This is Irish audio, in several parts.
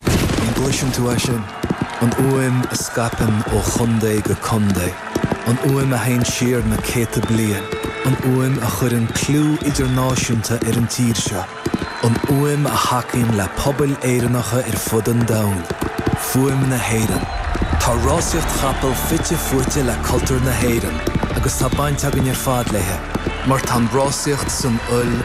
An gcloiseann tú é sin? An fhuaim a scaipeann ó chontae go contae. An fhuaim a théann siar na céadta bliain. An fhuaim a chuireann clú idirnáisiúnta ar an tír seo. An fhuaim a thacaíonn le pobail Éireannacha ar fud an domhain. Fuaim na hÉireann. Tá rásaíocht chapall fite fuaite le cultúr na hÉireann agus tá baint againn ar fad léi mar tá an rásaíocht san fhuil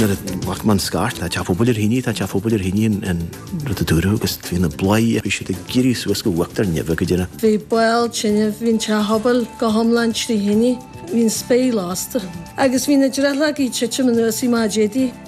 Nuair a ghlac mé an scairt, tá teach pobail ar thine, tá teach pobail ar thine an rud a dúradh agus bhí na bladhairí, bhí siad ag éirí suas go uachtar neimhe go deireadh. Bhí baol tine, bhí an teach pobail go hiomlán trí thine, bhí an spéir lasta agus bhí na drithleogaí ag titim anuas mar a déarfá.